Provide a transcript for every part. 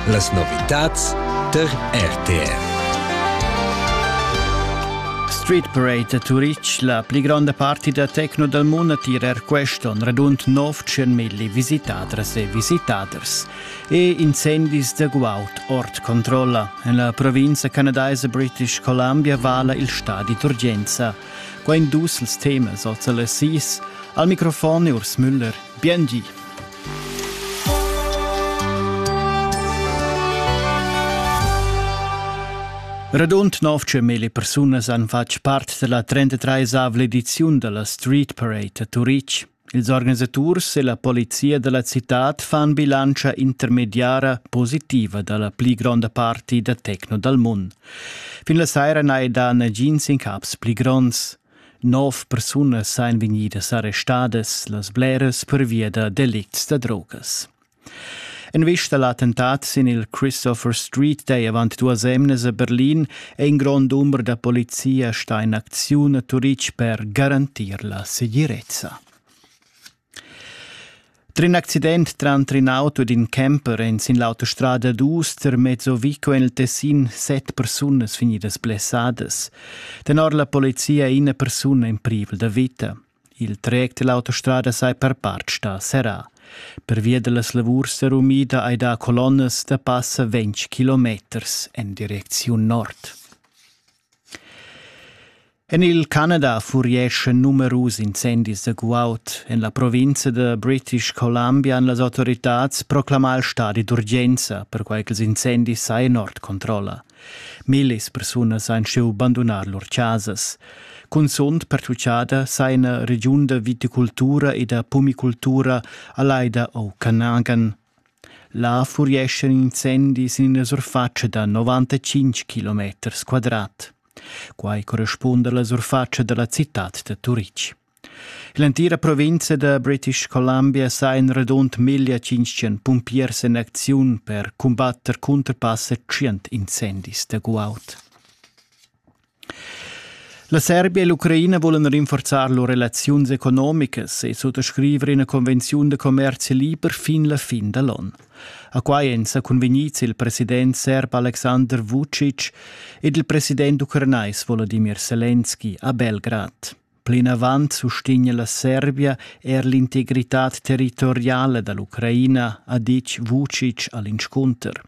Las novitads tar RTR. Street Parade a Turitg, la pli gronda parti da tecno dal mund attira er questo, un radund 900 milli visitadras e visitaders e incendis da guaud ord controlla. En la provincia canadaisa British Columbia vala il stadi d'urgenza. Quai in dus temas oz alle 6. Al microfon Urs Müller. Bien Radund 900.000 persunas han fatg part dalla 33esavla ediziun dalla Street Parade a Turitg. Ils organisaturs e la polizia dalla citad fan bilantscha intermediara positiva dalla pli gronda parti da techno dal mund. Fin la saira n'hai dà nagins incaps pli gronds. Nov persunas ein vegnidas arrestadas, las bleras pervia da delicts da drogas. En vista l'attentat sin il Christopher Street dei avant duas emnas a Berlin è in grond umber da polizia sta in acziun a Turitg per garantir la segirezza. Trin accident tranter in auto ed in camper en sin l'autostrada dus termezzo vi co en il Tessin set persunas vegnidas blessadas. Tenor la polizia è ina persuna in privel da vita. Il trec dell'autostrada sei per part sta serrà. Per via dellas lavurs serumida hai dà colonnas da passa 20 kilometers en direcziun nord. En il Canada furieschan numerus incendis da guaud. En la provinza da British Columbia han las autoritads proclamà il stadi d'urgenza, perquai ch'ils incendis sajan ord controlla. Millis persunas han schiu bandunar lur chasas. Cunzunt pertutgada saja regiun da viticultura e da pumicultura a Laida o Canagan. Là furieschan incendis in ina surfatscha da novantacinq kilometers quadrat. Quai correspunda alla surfatscha dalla citad da Turitg. L'entira provinza da British Columbia sa in radund 1500 pumpiers en acziun per cumbatter cunter passa tschient incendis da guaud. La Serbia e l'Ucraina vulan rinforzar lur relaziuns economicas e suttascriver ina convenziun da commerzi liber fin la fin da l'on. A quai èn sa cunvegnids il president serb Aleksandr Vucic ed il president ucranais Volodimir Selenski a Belgrad. Plinavant sustegna la Serbia er l'integritad territoriala da l'Ucraina, ha ditg Vucic a l'inscunter.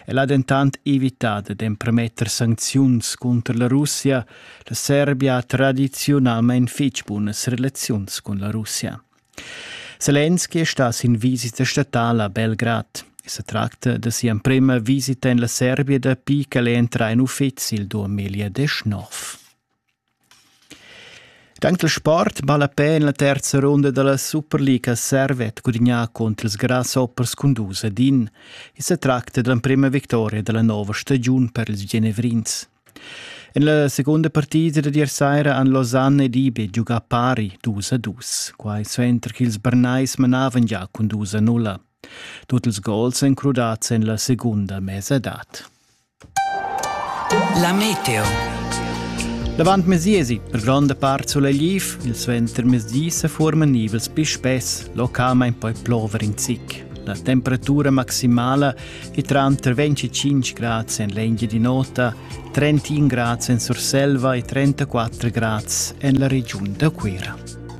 El ha dentant evità dad empermetter sancziuns cunter la Russia. La Serbia ha tradiziunalmain fitg bunas relaziuns cun la Russia. Selenski è stà sin visita statala a Belgrad. Se tracta de sia emprema visita en la Serbia dapi ch'el è entrà in uffizi il 2019. Tanc il sport ballapè en la terza runda da la Superliga servet gudignà cunter ils Grasshoppers cun dus ed in. I sa tracta dell'emprema victoria dalla nova stagiun per ils Genevrins. En la segunda partida dad ier saira han Lausanne ed Ibe giugà pari dus a dus, quai suenter ch'ils Bernais manavan già cun dus a nulla. Tut ils gols èn crudads en la segunda mesadad. La meteo. L'avantmezdi esi per gronda part sulegliv, il suentermezdi se forman nivels pi spess, localment poi plover in zic. La temperatura maximala è tranter 25 grads en l'Engia di Nota, 31 grads en Surselva e 34 grads en la regiun da Cuira.